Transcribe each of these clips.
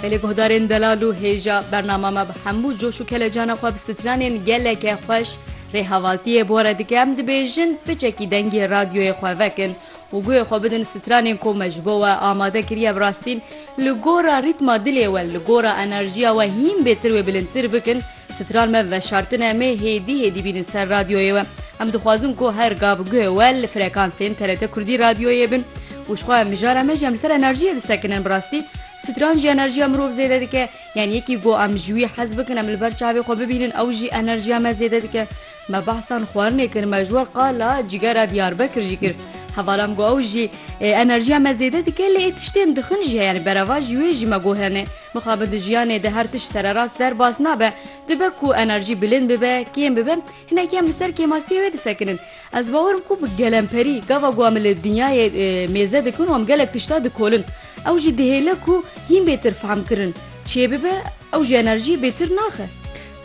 Gelê guhdarên delal û hêja bernama me bi hemû coş û kelecana xwe bi stranên geleke xweş rêhevaltiyê bore dike em dibêjin piçekî dengê radyoyê xwe vekin û guhê xwe bidin stranên ku me ji bo we amade kiriye bi rastî li gora rîtma dilê we li gora enerjiya we hîn bêtir wê bilindtir bikin Stran me veşartine me hêdî hêdî bînin ser radyoyê we. Em dixwazin ku her gav guhê we li frekansên TRT Kurdî radyoyê bin û ji xwe em mijara me jî em li ser enerjiyê disekinin. Bi rastî stran jî enerjiya mirov zêde dike. Yan yekî ku em ji wî hez bikin em li ber çavê xwe bibînin ew jî enerjiya me zêde dike. Me behsan xwarinê kir me ji we qala cigera Diyarbekir jî kir. Hevala em ku ew jî enerjiya me zêde dike lê ê tiştên dixin jî heye yanî berava ji wê jî me gotinê. Mixabin di jiyanê de her tişt sererast derbas nabe. Dibe ku enerjî bilind bibe, kêm bibe, hinek em li ser kêmasiyê wê disekinin. Ez bawer im ku bi gelemperî gava ku em li dinyayê mêze dikin û em gelek tişta dikolin. Ew jî dihêle ku hîn bêtir fehmkirin çê bibe, ew jî enerjiyê bêtir naxe.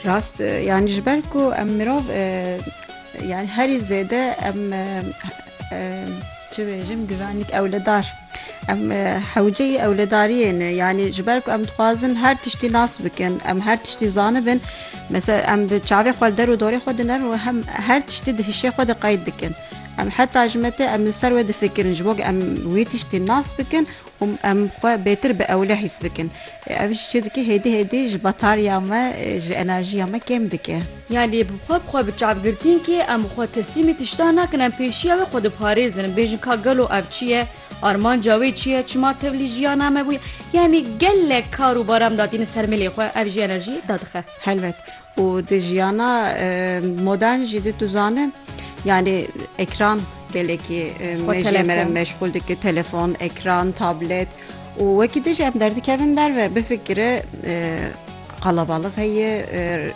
Rast e, yanî ji ber ku em mirov yanî herî zêde em çi bêjim givenîk ewledar. Em hewceyî ewledariyê ne. Yanî ji ber ku em dixwazin her tiştî nas bikin, em her tiştî zanibin. Mesela em bi çavê xwe li der û dorê xwe dinin û hem her tiştî di hişê xwe de qeyd dikin. Em heta ji me tê em li ser wê difikirin ji bo ku em wî tiştî nas bikin û em xwe bêtir bi ewle hîs bikin. Ev jî çi dike hêdî hêdî ji batarya me, ji enerjiya me kêm dike. Yan lê bi xwe bi xwe bi çav girtîn kê em bi xwe teslîmî tiştan nakin em pêşiya wê xwe diparêzin bêjin ka gelo ev çi ye armanca wê çi ye çima tevlî jiyana me bûye yanî gelek kar û baram datîne ser milê xwe ev jî enerjî dadixe. Helbet û di jiyana modern jî di tu zane yanî ekran gelekî mejê me re meşxûl dike telefon ekran tablet û wekî dijî em derdikevin derve bifikire qalabalix heye